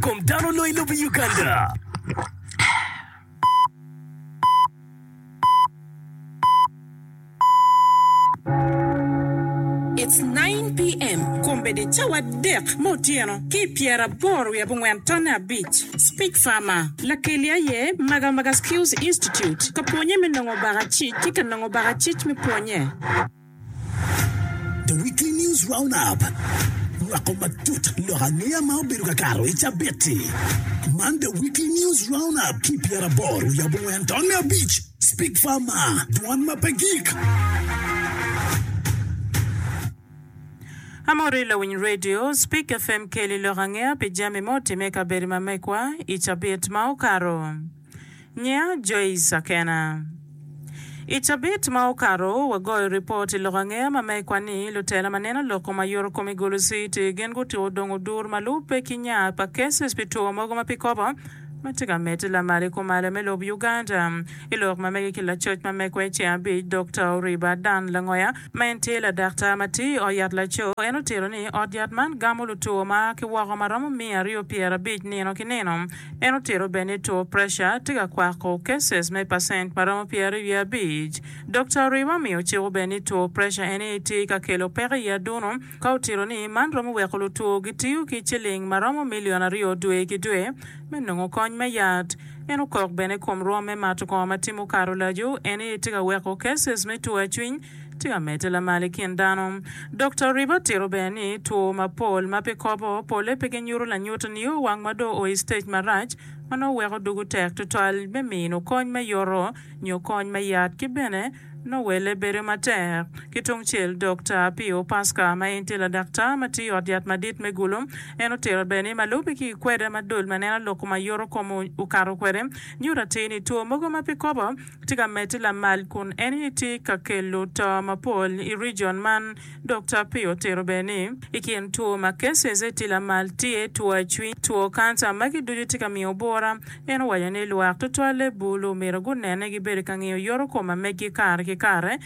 Kom dano onongo i lobo Uganda. It's 9 pm kombeddi cawa adek me otyeno ki pyera aboro wiye abongwen tonne abic. Speak farmer. Lakelli aye Maga Maga Skills Institute ka pwonye me nongo baka cic ki ka nongo baka cic me pwonye. The Weekly News Roundup rwako matut lok angeya ma obedo ka kato i cabit-ti. Man The Weekly News Roundup ki pyera boro wiye abongwen tonne abic. Speak Farmer, dwan ma pe gik. Amori lawiny redio, Speak FM keli lok angeya pi jami ma otimme i kabedo ma mekwa i cabit ma okato. Nyinga Joyce Akena. I cabit ma okato, wagoyo ripot i lok angeya ma megwa ni lutela ma neno lok kom aye orokom i gulu CT gin gutuko dong odur ma lubbe ki nya pa cases pi two mogo ma pi kobo ma tye ka medde lamal i kumalo me lob Uganda. I lok ma mege ki lacoc ma megwa i ceng abic, Dokta Oriba Dan Langoya ma en tye ladaktar ma tiyo i ot yat laco, en otito ni ot yat man gamo lutwo ma a ki woko ma romo miya aryo pyera abic nino ki nino. En otito bene ni two preca tye ka kwako cases me pacent ma romo pyeraryo wiye abic. Dokta Oriwa omiyo ciko bene ni two preca en aye tye ka kelo peko i adunu ka otito ni man romo weko lutwo gitiyo ki ciling ma romo milion aryo dwe ki dwe me nongo kony me yat. En okok bene kom rwom me mato kongo ma timo karolaco en aye tye ka weko cases me two acwiny Tye ka medde lamal i kin dano. Dokta Riba tito bene ni two mapol ma pe kobo pole pe ginyuto lanyut nio wang ma dong oo i stage marac ma nongo weko dugu tek tutwal me mino kony me yoto nyo kony me yat ki bene nongo welle bedo matek. Ki tung cel Dokta Pio Pasca ma en tye ladaktar ma tiyo i ot yat madit me Gulu en otito bene ni malube ki i kweda ma dul ma neno lok ma yoto kom okato kwede nyuto atir ni two mogo ma pe kobo tye ka medde lamal kun en aye tye ka kelo to mapol i region man dok Tapia otito bene ni i kin two ma cases aye tye lamal tye two acwiny, two kanca magi ducu tye ka miyo bura. En owaco ni lwak tutwalle bulu myero gunene gibedo ka ngiyo yorokom ma meggi kare ki kare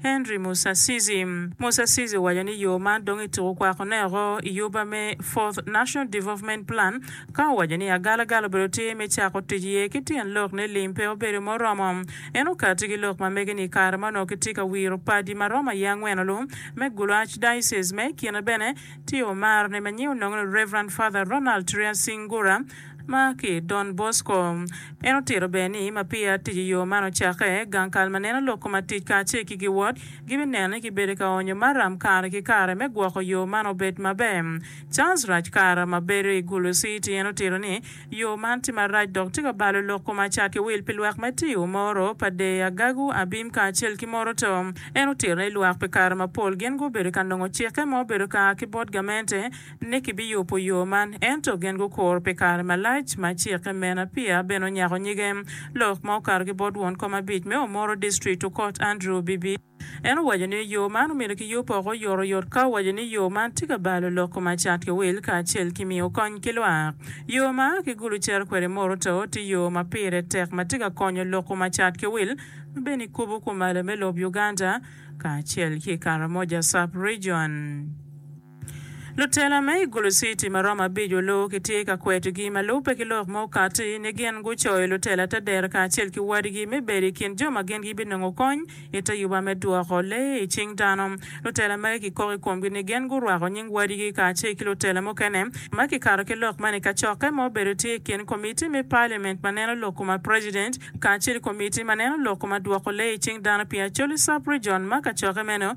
Henry Musasizi. Musasizi owaco ni yo man dong ituko kwakone oko i yuba me Fourth National Development Plan ka owaco ni agalagala obedo tye me cako tic iye ki tyen lok ni lim pe obedo muromo. En okati ki lok ma mege ni i kare ma onongo kitye ka wiro padi ma romo aye angwen olu me gulu Archdiocese ma i kine bene tye omar ne ma nying onongo ni Rev. Father Ronald Triasingura Ma ki Don Bosco. En otito bene ni ma peya tic i yo man ocakke, gang kal ma neno lok koma tic kacel ki giwod gibineno ni kibedo ka onyo maram kare ki kare me gwoko yo man obed maber. Charles Rajkar, ma bedo i Gulu City, en otito ni, Yo man tye marac dok tye ka balo lok koma ca ki wil pi lwak me Tiyo, Moro, Padey, Agagu, Abim kacel ki Moroto. En otito ni lwak pi kare mapol gin gubedo ka nongo cikke ma obedo ka a ki bot gamente, ni kibiyubo yo man, ento gin gukuro pi kare malac ma cikke me Napier bene onyako nyige. Lok ma okato ki bot won kom abic me Omoro District Okot Andrew Bibi, en owaco ni yo man omyero kiyub oko oyot oyot ka owaco ni yo man tye ka balo loko ma cat ki wil kacel ki miyo kony ki lwak. Yo ma a ki Gulu cito kwede i Moro Too tye yo ma pire tek ma tye ka konyo loko ma cat ki wil ma bene i kubo kumalo me lob Uganda kacel ki i Karamoja Sub Region. Lutela me i Gulu City ma romo abico luwu kitye ka kwetogi ma lubbe ki lok ma okatti ni gin gucoyo lutela te dero kacel ki wadigi me bedo i kin jo ma gin gibinongo kony i te yuba me dwoko lee i cing dano. Lutela magi kikok i komgi ni gin gurwako nying wadigi kacel ki lutela mukene ma kikato ki lok man i kacokke ma obedo tye i kin Komitti me Paliament ma neno lok kuma President kacel ki Komitti ma neno lok kuma dwoko lee i cing dano pi Acholi Sub-Region ma kacokke meno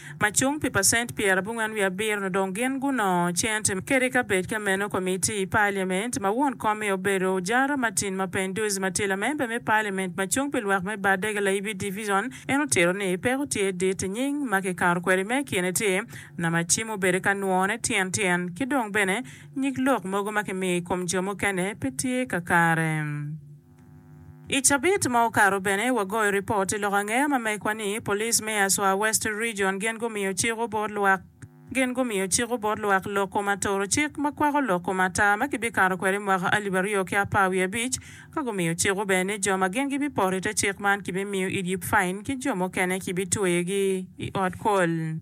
ma cung pi pacent pyerabongwen wiye abiro-nu dong gin gunongo cent kede ka bed ka meno komitti i Paliament ma won komme obedo Ojara Martin ma Penduzi ma tye lamemba me Paliament ma cung pi lwak me Bardega Laibi Division en otito ni peko tye dit i nying ma kikato kwede me kine tye nama ci mubedo ka nwone tyen tyen ki dong bene nyig lok mogo ma kimiyo i kom jo mukene pe tye kakare. I cabit ma okato bene, wagoyo ripot i lok angeya ma mekwa ni Police me Aswa West Region gin gumiyo ciko bot lwak gin gumiyo ciko bot lwak loko ma toro cik ma kwako loko ma tar ma kibikato kwede i mwaka alip aryo ki apar wiye abic ka gumiyo ciko bene ni jo ma gin gibipoto i te cik man kibimiyo idye pain ki jo mukene kibitweyogi i ot kol.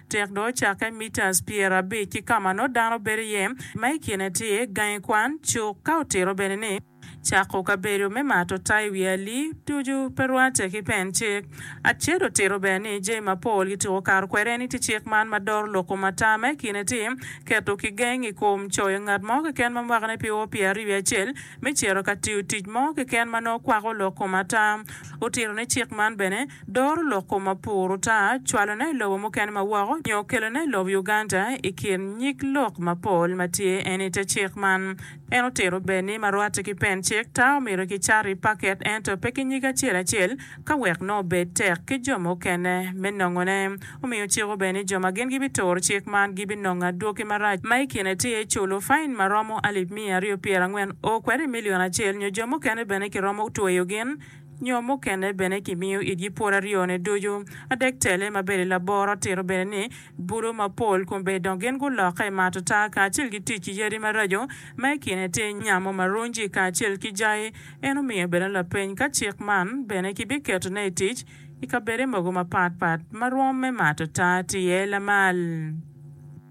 Tek dong ocakke mitas pyerabic ki ka ma nongo dano bedo iye, ma i kine tye gangi kwan, cuk, ka otito bene ni, Cako kabedo me mato ta i wi ali ducu pe rwatte ki pen cik. Aced otito bene ni, Jami mapol kituko kato kwede eni tye cik man ma doro lok kom ata, ma i kine tye, keto kigeng i kom coyo ngat mo keken ma mwakane pe o pyeraaryo wiye acel me cito ka tiyo tic mo keken ma nongo kwako lok kom ata. Otito ni cik man bene, Doro lok kom mapur ota, cwalone i lobo mukene ma woko, nyo kelone i lob Uganda i kin nyig lok mapol ma tye en i te cik man. En otito ber ni ma rwate ki pen cik ta omyero ki cato i paket ento pe ki nyig acel acel ka wek nongo obed tek ki jo mukene me nongone. Omiyo cik ober ni jo ma gin gi bi turo cik man gi bi nongo adwoki marac ma i kine tye culo fain ma romo alip miya aryo pyerangwen o kwede i million acel nyo jo mukene bene ki romo tweyo gin nyo mukene bene kimiyo itgi pwod aryone ducu. Adek tele ma bedo laboro tito bene ni budo mapol kombe dong gin gulokke ma atata kacel ki tic ki yadi maraco ma i kine tye nyamo marunji kacel ki jai. En omiyo bene lapeny ka cik man bene kibiketone i tic i kabede mogo mapatpat ma rwomme ma atata tye lamal.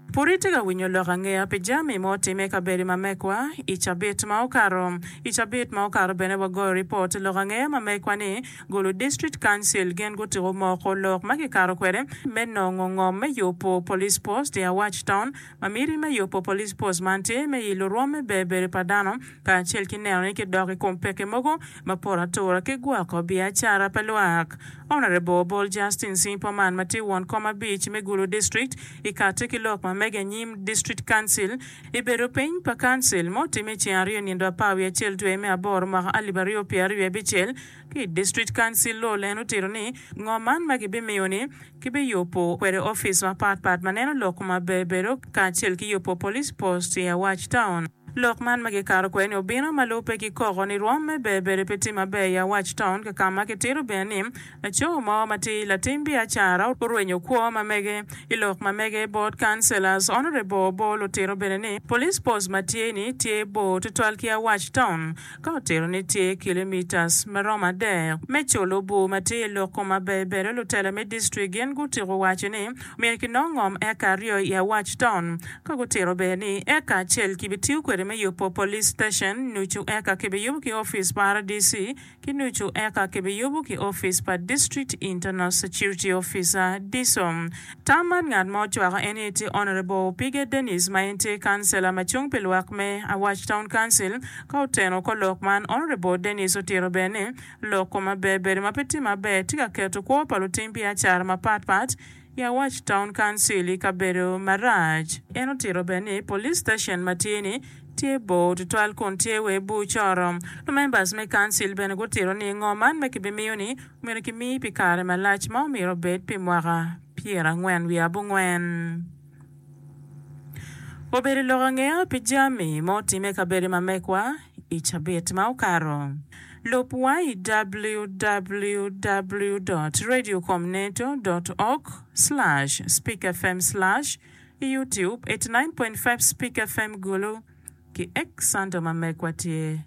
Pud itye ka winyo lok angeya pi jami ma otimme i kabedo ma mekwa i cabit ma okato? I cabit ma okato bene wagoyo ripot lok angeya ma mekwa ni Gulu District Council gin gutuko moko lok ma kikato kwede me nongo ngom me yubo Police Post i Awac Town ma miti me yubo Police Post man tye me i lurwom me bedo bedo pa dano kacel ki neno ni kidok i kom peke mogo ma poto atura ki gwoko biacara pa lwak. Honourable Obol Justin Simpo man ma tye won kom abic me Gulu District i kati ki lok ma mege anyim District Council i bedo piny pa Council ma otimme i ceng aryo nindo apar wiye acel dwe me aboro mwaka alip aryo pyera aryo abicel ki District Council Lol en otito ni ngo man ma gibimiyo ni kibiyubo kwede office mapat pat ma neno lok ma bebedo kacel ki yubo Police Post i Awac Town. Lok man ma gikato kwede-ni obino ma lubbe ki koko ni rwom me Berberi pe tye maber i Awac Taun kakama kitito bene ni laco mo ma tye latim biacara orwenyo kwo ma mege. I lok ma mege, Board Councillors Honourable Obol otito bene ni Police Post ma tye-ni tye bor tutwal ki Awac Taun. Ka otito ni tye kilometres ma romo adek me colo bur ma tye i lok kom abebedo lutela me district gin gutiko waco ni myero ki nok ngom eka aryo i awac taun ka gutito ber ni eka acel ki bi tiyo kwede me yubo police station nucu eka ki bi yubo ki office pa RDC ki nucu eka ki bi yubo ki office pa district internal security officer, DISO. Tam man ngat ma ocwako en aye tye Honourable Opige Denis ma en tye Councillor ma cung pi lwak me Awac Town Council. Ka oteno kor lok man, Honourable Denis otito bene ni, Lok kom maber bedo ma pe tye maber tye ka keto kwo pa lutim biacara mapat pat i Awac Town Council i kabedo marac. En otito bene ni, Police Station ma tye ni tye bor tutwal kun tye wa i bur coro. Lumembers me Council bene gutito ni, Ngo man ma kibimiyo ni? Myero kimi pi kare malac ma omyero obed pi mwaka pyerangwen wiye abongwen. Obedo i lok angeya pi jami ma otimme i kabedo ma mekwa i cabit ma okato. Lub wa i www dot radio com neto dot org slash speak fm slash i youtube eighty nine point five speak fm gulu ki ek santo ma mekwa tye.